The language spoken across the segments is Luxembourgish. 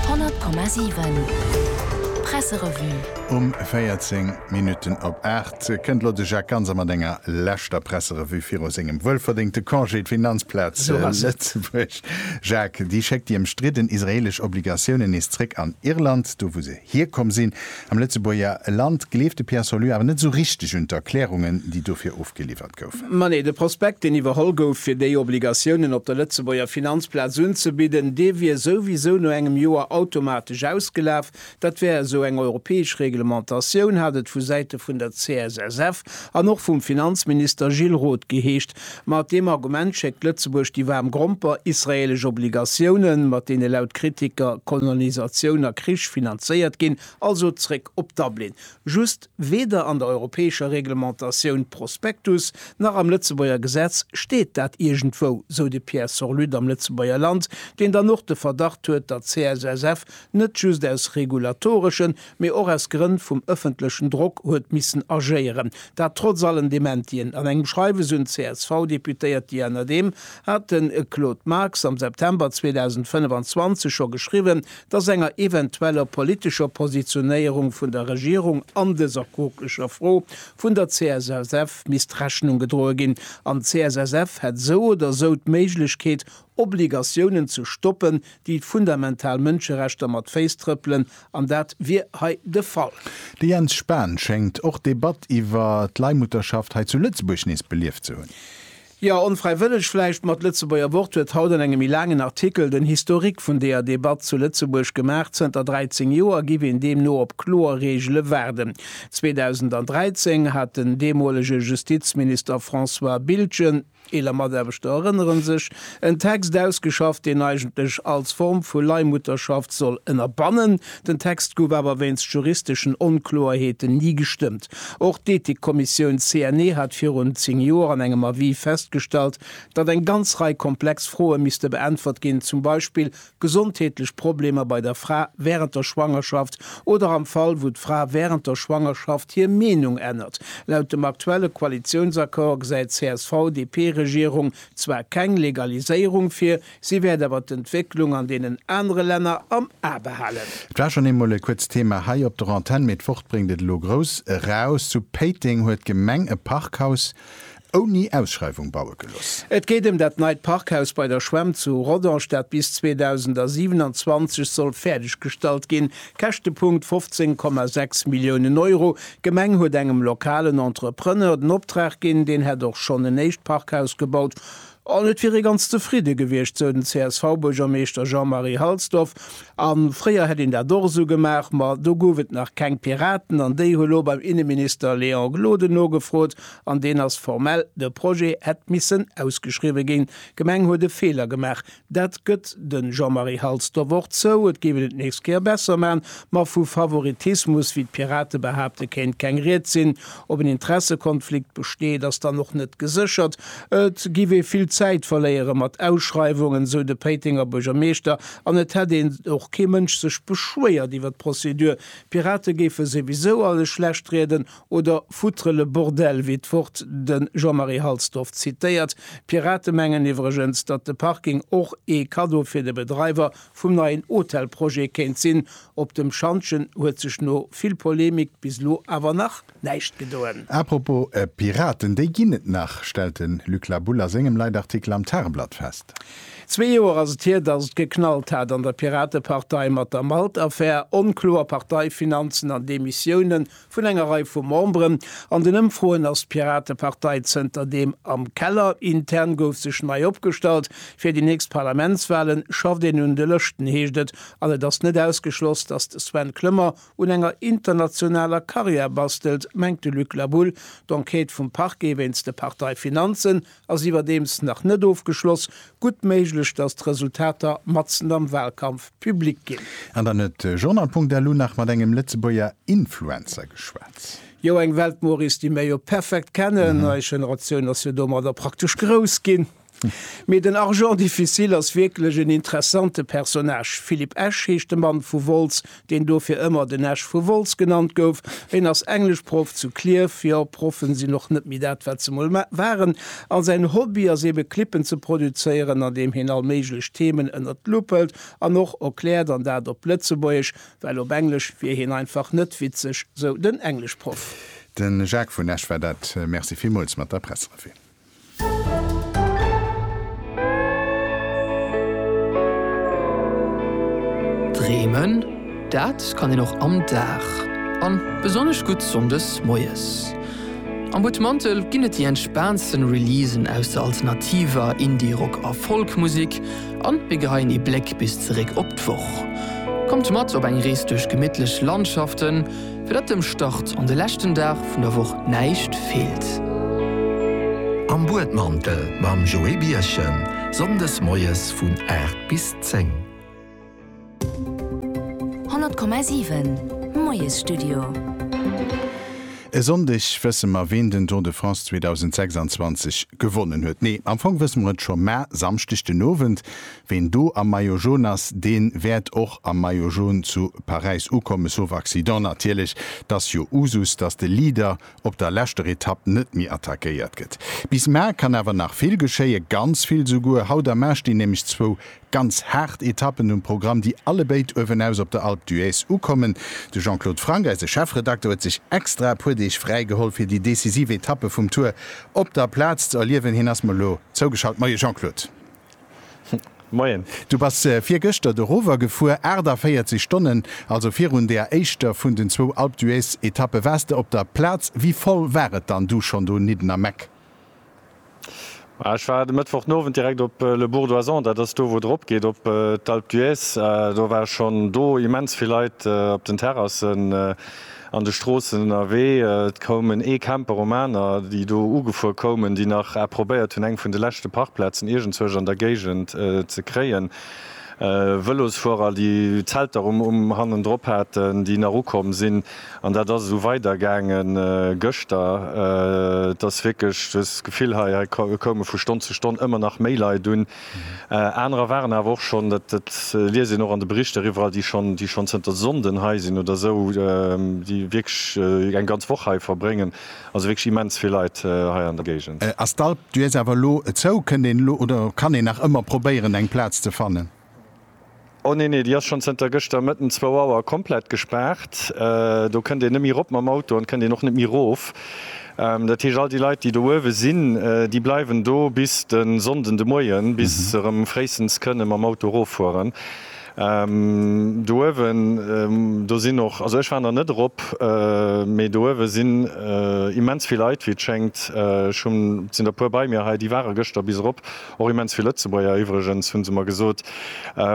100,7 Presserevue. Um 14 Minutten op 8 kënnt elo de Jacques Ganser mat enger leschter Presserevue viru sengem wuelverdéngte Congé. D'Finanzplaz Lëtzebuerg, Jacques, déi schéckt déi ëmstridden israeelesch Obligatiounen nees zréck an Irland, do wou se. Hierkomm sinn. Am Lëtzebuerger Land gleeft de Pierre Sollier awer net esou richteg un d'Erklärungen, déi dofir ofgeliwwert goufen. Ma nee, de Prospekt, deen iwwerholl gouf, fir déi Obligatiounen op der Lëtzebuerger Finanzplaz unzebidden, dee wier souwisou no engem Joer automatesch ausgelaf. Dat wär esou eng europäesch Reglementatioun, hat et vu Säite vun der CSSF an och vum Finanzminister Gilles Roth geheescht. Mat deem Argument schéckt Lëtzebuerg déi waarm Gromper israeelesch Obligatiounen, mat deene laut Kritiker Kolonisatioun a Krich finanzéiert ginn, also zréck op Dublin. Just, weder an der europäescher Reglementatioun Prospectus nach am Lëtzebuerger Gesetz steet dat iergendwou, sou de Pierre Sorluth am Lëtzebuerger Land, deen dann och de Verdacht huet, datt CSSF net just aus regulatoreschen, mee och aus Grënn vum ëffentlechen Drock huet missen agéieren. Dat trotz allen Dementien. An engem Schreiwes un d'CSV-Deputéiert Diana Dehm hat de Claude Marx am September 2025 scho geschriwwen, datt enger eventueller politescher Positionéierung vun der Regierung an dëser quokleger Fro vun der CSSF misst Rechnung gedroe ginn an d'CSSF hätt sou oder sou d'Méiglechkeet, Obligatiounen ze stoppen, déi d'fundamental Mënscherechter mat Féiss trëppelen An dat wier hei de Fall. De Jens Spahn schéngt och d'Debatt iwwer d'Leihmutterschaft hei zu Lëtzebuerg nees belieft ze hunn. Jo, onfräiwëlleg vläicht, ma d'Lëtzebuerger Wort huet haut an engem méi laangen Artikel den Historique vun deeër Debatt zu Lëtzebuerg gemaach. Zënter 13 Joer giff een deemno op kloer Reegele waarden. 2013 hat den deemolege Justizminister François Biltgen, Eeler Mataarbechter erënnere sech, en Text ausgeschafft, deen eigentlech als Form vu Leihmutterschaft soll ënnerbannen. Den Text gouf awer wéinst juristeschen Onkloerheeten ni gestëmmt. Och d'Ethikkommissioun CNE hat virun 10 Joer an engem Avis festgestallt, datt eng ganz Rei komplex Froe misste beäntwert ginn, zum Beispill, gesondheetlech Problemer bei der Fra während der Schwangerschaft oder am Fall, wou d'Fra während der Schwangerschaft hir Meenung ännert. Laut dem aktuelle Koalitiounsaccord gesäit d'CSV-DP-Regierung zwar keng Legaliséierung vir, si wäert awer d'Entwécklung an deenen anere Länner am A behalen. Et war schonn eemol e kuerzt Thema hei op der Antenn, mee d'Wort bréngt et elo grouss eraus. Zu Péiteng huet d'Gemeng e Parkhaus ouni Ausschreiwung baue gelooss. Et geet ëm dat neit Parkhaus bei der Schwämm zu Rodange, dat bis 2027 soll fäerdeggestallt ginn. Käschtepunkt, 15,6 Milliounen Euro. D'Gemeng huet engem lokalen Entrepreneur den Optrag ginn, deen hätt och schonn en éischt Parkhaus gebaut. An et wier ee ganz zefridde gewiescht, sou den CSV-Buergermeeschter Jean-Marie Halsdorf. A fréier hätt een dat och esou gemaach, ma do gouf et nach keng Piraten an déi hu lo beim Inneminister Léon Gloden nogefrot an deen ass formell. De Projet hätt missen ausgeschriwwe ginn. D'Gemeng huet e Feeler gemaach, dat gëtt de Jean-Marie Halsdorf och zou. Et géif een et d'nächst Kéier besser maachen, ma vu Favoritismus, wéi d'Pirate behaapte kéint keng Rieds sinn. Ob en Interessekonflikt besteet, ass dann och net geséchert. Et giff ee vill Zäit verléiere mat Ausschreiwungen, esou de Péitenger Buergermeeschter, an et hätt een och kee Mënsch sech beschwéiert iwwer d'Prozedur. D'Pirate géife souwisou alles schlechtrieden oder foutre le bordel, wéi d'Wort de Jean-Marie Halsdorf zitéiert. D'Pirate mengen iwwregens, datt de Parking och ee Kaddo fir de Bedreiwer vum neien Hotelprojet kéint sinn. Op dem Schantjen huet sech no vill Polemik bis elo awer nach näischt gedoen. Apropos Piraten, déi ginn et nach, stellt de Luc La Boulle a sengem Leitartikel am Tageblatt fest. Zwee Joer ass et hier, datt et geknallt hat an der Piratepartei mat der Malt-Affär. Onkloer Parteifinanzen an Demissiounen Vun enger Rei vu Memberen. An den Ëmfroen ass d'Piratepartei zënterdeem am Keller. Intern gouf sech nei opgestallt. Fir déi nächst Parlamentswale schafft een un de Lëschten, heescht et. An et ass net ausgeschloss, datt de Sven Clement un enger internationaler Karriär bastelt, mengt de Luc Labulle. D'Enquête vum Parquet wéinst de Parteifinanzen. Ass iwwerdeems nach net ofgeschloss. Gutt méiglech, datt d'Resultater matzen am Walkampf public ginn. An dann huet de Journal.lu nach mat engem Lëtzebuerger Influencer geschwat. Jo, eng Welt, Maurice, déi mär jo perfekt kennen. Eis Generatioun ass jo domadder praktesch grouss ginn. Mee den Argent difficile ass wierklech en interessante Personnage. Philippe Esch heescht de Mann vu Wolz, deen dofir ëmmer den Esch vu Wolz genannt gouf. Hien ass Engleschproff zu Klierf, jo, Proffen sinn och net méi dat, wat se emol waren, a säin Hobby ass ebe Clippen ze produzéieren, andeem hien all méiglech Themen ënnert d'Lupp hëlt an och erkläert, an dat op Lëtzebuergesch, well op Englesch wier hien einfach net witzeg, sou den Engleschproff. De Jacques vun Esch war dat. Merci villmools mat der Pressrevue. Dreemen, dat kann een och am Dag, an besonnesch gutt Sonndes moies. Am Boîte Mantel ginn et déi entspaantsten Releasen aus der alternativer, Indie, Rock a Folk Musek, an mir geheien ee Bléck bis zeréck op d'Woch. Kommt mat op eng Rees duerch gemittlech Landschaften. Fir datt dem Start an de leschten Dag vun der Woch näischt feelt. Am Buedmantel mam Joé Birchen, Sonndes moies vun 8 bis 10. 100,7, Moiesstudio. E Sonndeg wësse mer, ween den Tour de France 2026 gewonnen huet. Nee, am Fong wësse mer et scho, mä Samschdeg den Owend Ween do am Maillot Jaune ass, deen wäert och am Maillot Jaune zu Paräis ukommen, sauf accident natierlech. T'ass jo Usus, dass de Leader op der leschter Etapp net méi attackéiert gëtt. Bis Mar kann awer nach vill geschéien, ganz vill souguer. Haut a Mar stinn nämlech zwou ganz haart Etappen um Programm, déi allebéid uewenaus op der Alpe d'Huez ukommen. De Jean-Claude Franck, eise Chefredakter, huet sech extra e puer Deeg fräi geholl, fir déi decisiv Etappe vum Tour op der Plaz ze erliewen. Hien ass mer elo zougeschalt. Moie Jean-Claude. Moien. Du bass virgëschter de Rover gefuer, 48 Stonnen, also virun deer éischter vun den zwou Alpe d'Huez Etappe wars de op der Plaz. Wéi voll war et dann du schonn do nidden am Eck? Ech war de Mëttwoch Nowend direkt op Le Bourg d'Oisans, dat ass do wou et erop geet op d'Alpe d'Huez. Do ware schonn do immens vill Leit op den Terrassen. an de Stroossen ënnerwee. Et koumen ee Camper um aner, déi do ugefuer koumen, déi nach a probéiert hunn, eng vun de leschte Parkplazen iergendzwousch an der Géigend ze kréien. Vëlosfuerer, déi Zelter um hannendrop haten, déi nach ukomm sinn. An dat ass esou weidergaange gëschter. Et ass wierklech, du hues d'Gefill, hei koume vu Stonn zu Stonn ëmmer nach méi Leit un. Anerer waren awer och schonn, dat liest een och an de Berichter iwwerall, déi schonn zënter Sonnden hei sinn oder esou, déi wierklech eng ganz Woch hei verbréngen. Also wierklech immens vill Leit hei an der Géigend. Ass d'Alpe d'Huez awer elo zou? Kënnt een elo oder kann een nach ëmmer probéieren, eng Plaz ze fannen? Oh nee, nee, déi ass schonn zënter gëschter Mëtten zwou Auer komplett gespaart. Do kënnt een net méi erop mam Auto an kënnt een och net méi erof. Dat heescht, all déi Leit, déi do uewe sinn, déi bleiwen do bis de Sonnden de Moien, bis se erëm fréistens kënne mam Auto eroffueren. Do uewen, do sinn och, also ech war nach net erop, mee do uewe sinn immens vill Leit, wéi et schéngt. Ech hunn, et sinn der e puer bei mir hei, déi ware gëschter bis erop Och immens vill Lëtzebuerger iwwregens, hu se mer gesot.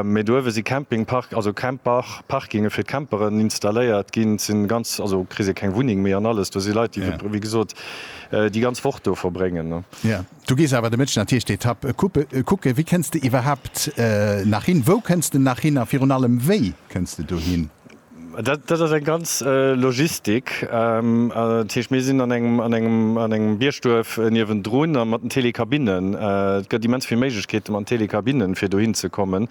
Mee do uewe si Camping Park, also Camper Parkinge fir d'Camperen installéiert ginn. Et sinn ganz, also kriss ee keng Wunneng méi an alles. Do si Leit, déi wéi gesot déi ganz Woch do verbréngen. Jo, du gees awer de Mëtteg natierlech d'Etapp kucken. Wéi kënns de iwwerhaapt nach hin? Wou kënns de nach hin a virun allem wéi kënns de dohin? Dat ass eng ganz Logistik. Dat heescht, mir sinn an engem Biergduerf niewendrun a mat den Télécabinen, et gëtt immens vill Méiglechkeete mat den Télécabinen, fir dohin ze kommen.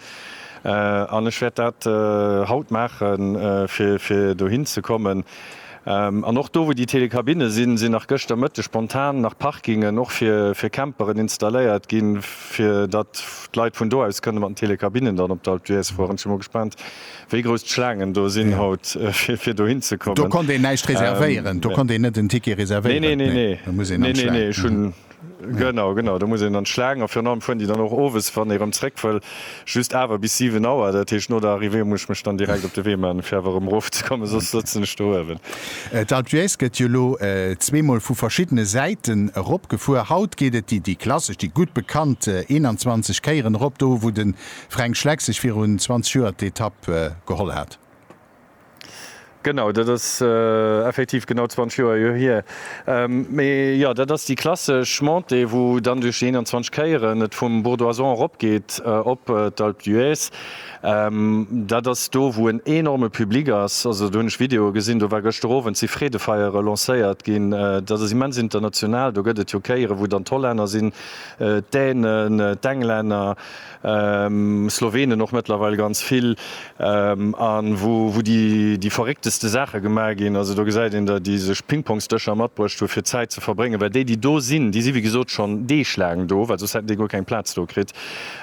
An ech wäert dat haut maachen, fir dohin ze kommen. An och do, wou déi Télécabine sinn, sinn nach gëschter Mëtteg spontan nach Parkingen och fir Camperen installéiert ginn, fir datt d'Leit vun do aus kënne mat den Télécabinen dann op d'Alpe d'Huez fueren. Ech si mol gespaant, wéi grouss d'Schlaangen do sinn haut, fir dohin ze kommen. Do konnt een näischt reservéieren, do konnt een net en Ticket reservéieren. Nee, nee, nee, nee, nee, nee, nee, ech hunn, genau, genau, do muss een an d'Schlaang. A virun allem fueren déi dann och owes, wann ee erëm zréck wëll, just awer bis 7 Auer. Dat heescht, no der Arrivée muss ech mech dann direkt op de Wee maachen, fir awer erëm erof ze kommen, soss sëtzen ech do uewen. D'Alpe d'Huez gëtt jo elo zweemol vu verschiddene Säiten eropgefuer. Haut geet et déi klassesch, déi gutt bekannt 21 Kéieren erop, do wou de Fränk Schleck sech virun 20 Joer d'Etapp geholl hat. Genau, dat ass effektiv genau 20 Joer jo hier. Mee jo, dat ass déi klassesch Montée, wou dann duerch déi 21 Kéieren et vum Bourdoisan erop geet op d'Alpe d'Huez. Dat ass do, wou en enorme Public ass. Also do hunn ech Videoe gesinn, do war gëschter Owend si Freedefeiere lancéiert ginn. Dat ass immens international. Do gëtt et jo Kéiere wou dann d'Hollänner sinn, d'Dänen, d'Englänner. Slowenen och mëttlerweil ganz vill an wou déi verréckteste Saache gemaach ginn. Also do gesäit een der, déi sech Pingpongsdëscher matbruecht hu fir Zäit ze verbréngen, well déi, déi do sinn, déi si wéi gesot schonn deeglaang do, well soss hätten déi guer keng Plaz do kritt.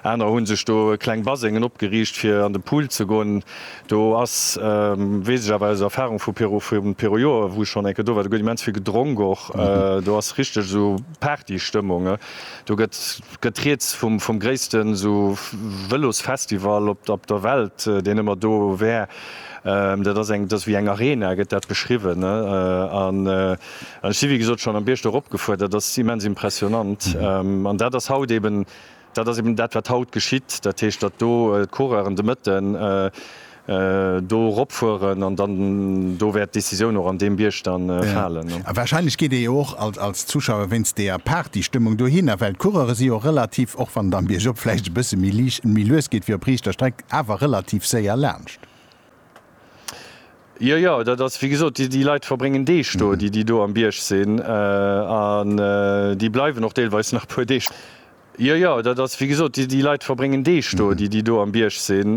Anerer hu sech do kleng Basengen opgeriicht fir an de Pool ze goen. Do ass, weess ech awer aus Erfarung vu Peru, vum Peru Joer wou ech schonn eng Kéier do war, do gëtt immens vill gedronk och. Do ass richteg esou Partystëmmung. Do gëtt. gëtt rieds vum vum gréissten esou Vëlosfestival op op der Welt, deen ëmmer do wär. Dat ass eng dat ass wéi eng Arena, gëtt dat beschriwwen. An ech si wéi gesot schonn am Bierg do eropgefuer, dat ass immens impressionant. An dat ass haut eeben dat ass eeben dat wat haut geschitt, dat heescht datt do d'Coureuren de Mëtten do eropfueren an dann do wäert d'Décisioun och an deem Bierg da falen. A wahrscheinlech geet ee jo och als Zuschauer wéinst deeër Partystëmmung dohinner, well d'Coureure si jo relativ, och wann et am Biergop vläicht e bësse méi liicht, méi lues geet wéi op riichter Streck, awer relativ séier laanscht. Jo, jo, dat ass wéi gesot, déi Leit verbréngen Deeg do, déi do am Bierg sinn, an déi bleiwen och deelweis nach e puer Deeg. Jo, jo, dat ass wéi gesot, déi Leit verbréngen Deeg do, déi do am Bierg sinn.